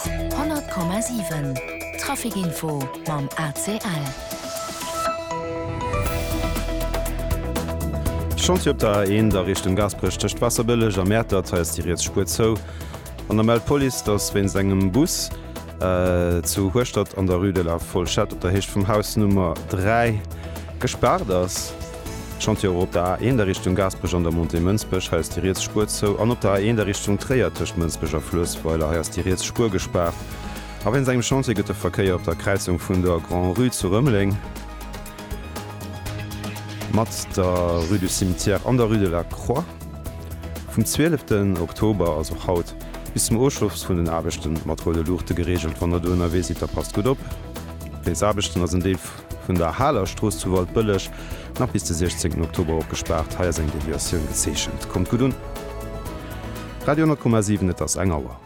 100,7 Trafic Info mam ACL. Schonns fir op der A1 a Richtung Gaasperech tëscht Waasserbëlleg a Mäertert. Hei ass déi riets Spuer zou. An da mellt d'Police, dass wéinst engem Bus zu Hueschtert an der Rue de la Fourchette op der Héicht vum Haus Nummer 3 gespaart ass. Chantier Op der A1 a Richtung Gaasperech an der Montée Mënsbech, hei ass déi riets Spuer zou, an op der A1 a Richtung Tréier tëscht Mënsbech a Fluessweiler, hei ass déi riets Spuer gespaart. A wéinst engem Chantier gëtt de Verkéier op der Kräizung vun der Grand-Rue zu Rëmeleng mat der Rue du Cimetière an der Rue de la Croix vum 12 den Oktober, also haut, bis zum Ofschloss vun den Aarbechten mat roude Luuchte gereegelt. Wann der do ënnerwee sidd, da passt gutt op. Wéinst Aarbechten ass en Deel. Vun der Haler Strooss zu Waldbëlleg, nach bis de 16 Oktober opgespaart, hei ass eng Deviatioun gezeechent. Kommt gutt un. Radio 10,7 Et ass eng Auer.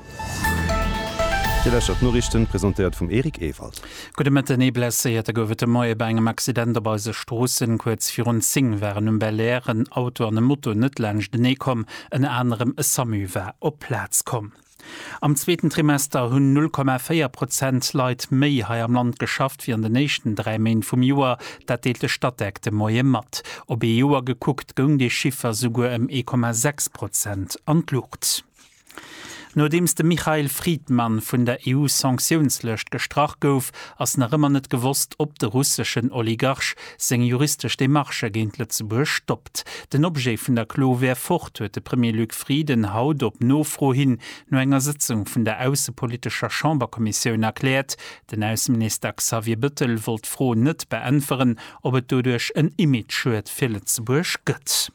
Dir lauschtert d'Noriichten, presentéiert vum Eric Ewald. Gudde Mëtten. Ee Blesséierte gouf et de Moie bei engem Accident op eise Stroossen. Kuerz virun 10 waren um Belair en Auto an e Moto net laanschtenee komm. Ënner anerem e Samu war op d'Plaz komm. Am zweeten Trimester hunn 0,4 Prozent Leit méi hei am Land geschafft wéi an den éischten dräi Méint vum Joer. Dat deelt de Statec de Moie mat. Op ee Joer gekuckt goung dee Chiffer souguer ëm 1,6 Prozent an d'Luucht. Nodeems de Mikhail Fridman vun der EU-Sanktiounslëscht gestrach gouf, ass nach ëmmer net gewosst, ob de russeschen Oligarch seng juristesch Demarchë géint Lëtzebuerg stoppt. geschafft. Den Objet vun der Klo wär fort, huet de Premier Luc Frieden haut op Nofro hin no enger Sëtzung vun der aussepolitescher Chamberkommissioun erkläert. Den Ausseminister Xavier Bettel wollt d'Fro net beäntweren, ob et doduerch en Imageschued fir Lëtzebuerg gëtt.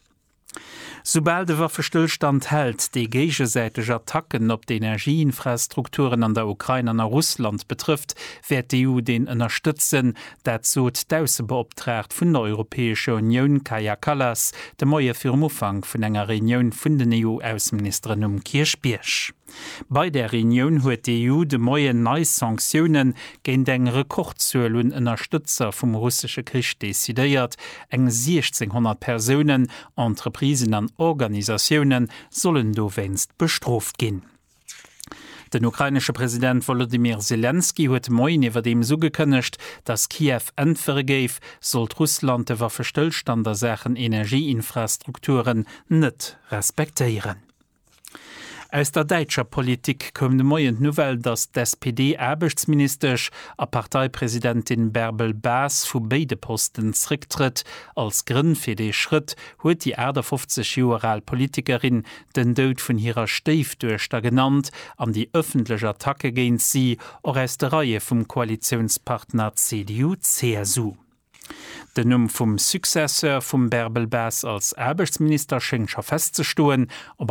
Soubal de Waffestëllstand hält, déi géigesäiteg Attacken op d'Energieinfrastrukturen an der Ukrain an a Russland betrëfft, wäert d'EU deen ënnerstëtzen, Dat sot d'Aussebeoptraagt vun der Europäescher Unioun Kaja Kallas de Moie virum Ufank vun enger Reunioun vun den EU-Ausseministeren um Kierchbierg. Bei där Reunioun huet d'EU de Moien nei Sanktioune géint eng Rekordzuel un Ënnerstëtzer vum russesche Krich decidéiert. Eng 1.600 Persounen, Entreprisen an Organisatioune sollen dowéinst bestrooft ginn. Den ukrainesche President Wolodymyr Selenskyj huet de Moien iwwerdeems ugekënnegt, datt Kiew äntwere géif, sollt Russland de Waffestëllstand a Saachen Energieinfrastrukturen net respektéieren. Aus der däitscher Politik koum de Moien d'Nouvelle, datt d'SPD-Aarbechtsministesch a Parteipresidentin Bärbel Bas vu béide Posten zrécktrëtt. Als Grënn fir dee Schrëtt huet déi 58 Joer al Politikerin den Doud vun hirer Stéifduechter genannt an déi ëffentlech Attacke géint si, och aus de Reie vum Koalitiounspartner CDU-CSU. Den Numm vum Successeur vum Bärbel Bas als Aarbechtsminister schéngt scho festzestoen, op